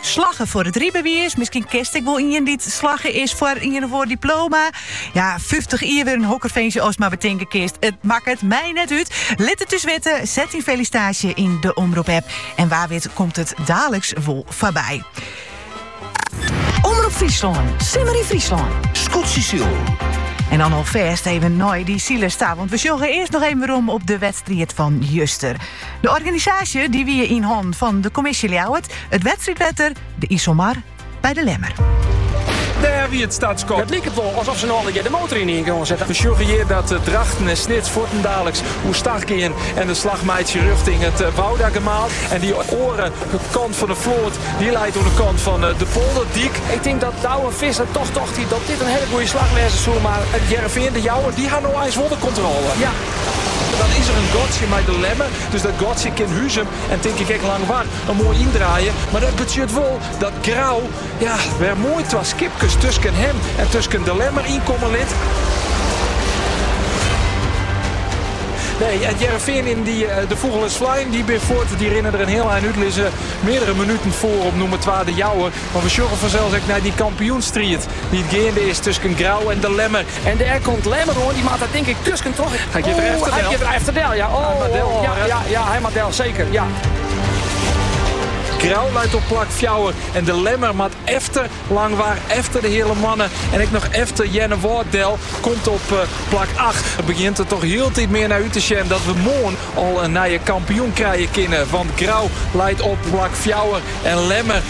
Slagge foar it rybewiis. Miskien kinst ek wol ien dy't slagge is foar ien of oar diploma. Ja, 50 jier, ferzin hokker winskje ast mar betinke kinst. It makket my net út. Lit it ús witte, set dyn felisitaasje yn de Omrop app en wa wit komt it daliks wol foarby. Omrop Fryslân, simmer yn Fryslân. Skûtsjesilen. En dan alfêst even nei de syldei sa, want we sjoggen eerst nog even werom op de wedstrijd van juster. De organisaasje die wie yn hannen fan de Kommisje Ljouwert, it wedstriidwetter, de Iselmar by de Lemmer. Dêr wie it startskot. It liket wol asof se no allegear de motor ynienen yn gong sette. We sjogge hjir dat Drachten en Snits fuortendaliks oer stach gean en de slach meitsje rjochting it Woudagemaal. En dy oare kant fan 'e float dy leit oan 'e kant fan de polderdyk. Ik tink dat Douwe Visser toch tocht hie dat dit in hiele goede slach wêze soe, mar Hearrenfean, De Jouwer, dy ha no eins wol de kontrôle. Dan is er in gatsje mei De Lemmer, dus dat gatsje kin Huzum en tink ik ek Langwar yn, moai yndraaie. Mar dat betsjut wol dat Grou ja, wer moai twa skipkes tusken him en tusken De Lemmer yn komme lit. Nee, It Hearrenfean dy eh, de fûgel is flein, dy bin fuort. Dy rinne der in hiel ein út, lizze meardere minuten foar op nûmer 2 De Jouwer. Mar we sjogge fansels ek nei dy kampioenstriid dy't geande is tusken Grou en De Lemmer. En dêr komt Lemmer oan. Die moat dêr tink ik tusken troch. Hy giet er efter del. Hy giet er efter del, ja. Oh, hy del. Ja, ja, ja, hy moat del, seker, ja. Grou leit op plak fjouwer en de Lemmer moat efter Langwar, efter de Heale Moanne en ek noch efter Earnewâld del. Komt op eh, plak acht. It begjint der toch hieltyd mear nei út te sjen dat we moarn al in nije kampioen krije kinne. Want Grou leit op plak fjouwer en Lemmer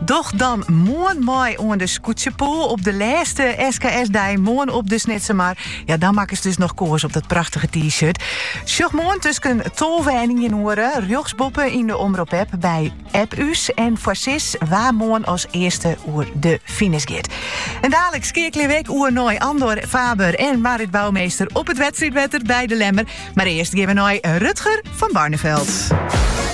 Doch dan moarn mei oan de skûtsjepoule op de lêste SKS-dei, moarn op de Snitsemar. Ja, dan makke se dus noch koars op dat prachtige T-shirt. Sjoch moarn tusken tolve en ien oere rjochtsboppe yn de Omrop-app by App Ús en foarsis wa moarn as earste oer de finish giet. En daalk skeakelje we ek oer nei Andor Faber en Marit Bouwmeester op it wedstriidwetter by de Lemmer. Mar earst gean we nei Rutger van Barneveld.